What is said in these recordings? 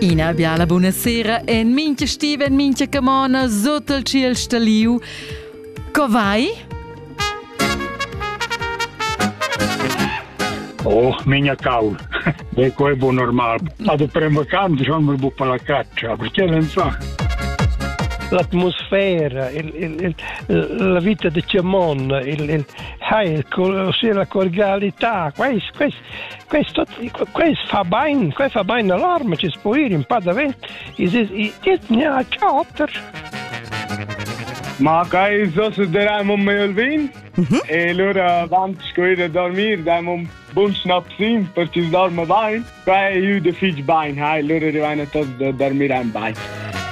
Ina biala buonasera en mincha stiva, en mincha camona, sut il ciel staliu. Co vai? Oh, minia cau. De quei bu normal. Ma de prem vacant schon mi bu pa la caccia, perché len fa? L'atmosfera, il, il, il, la vita de Cemon, il, il, il, ossia la cordialità, questo, questo, questo, questo fa bene, questo fa bene all'arma, ci può ire un po' davvero, e ne ha quattro. Ma kai so se deram un mail vin? E lura avant sco ir a dormir daim un bun schnapsin per chi dorma bain. Qua è ü da fich bain, hai, lura rivaina tots da dormir aint bain.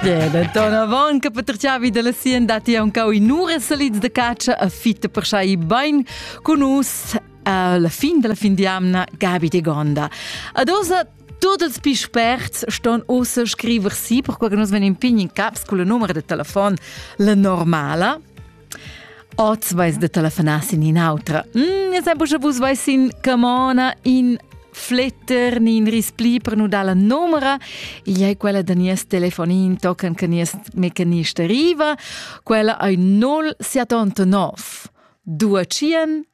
Beh, da ton avant che Peterciavi della Sien dati ancau i nure salids de caccia a fitta per sai bain con us alla fin della fin di amna Gabi de Gonda. Ad osa Tot els più sperts ston ossa scriver si, per qual che nos ven in pign in caps con la numero de telefon, la normala, Oz vais de telefonar sin in'autra. Mm, e sai buca vus vais in camona in fletter ni in rispli per nu dar la numera. Igl è quella da nies telefonin tocan che nies mecanist arriva. Quella ai 0789 200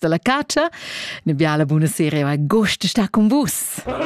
da la catscha. Ina biala buna sera e agost sta cun vus!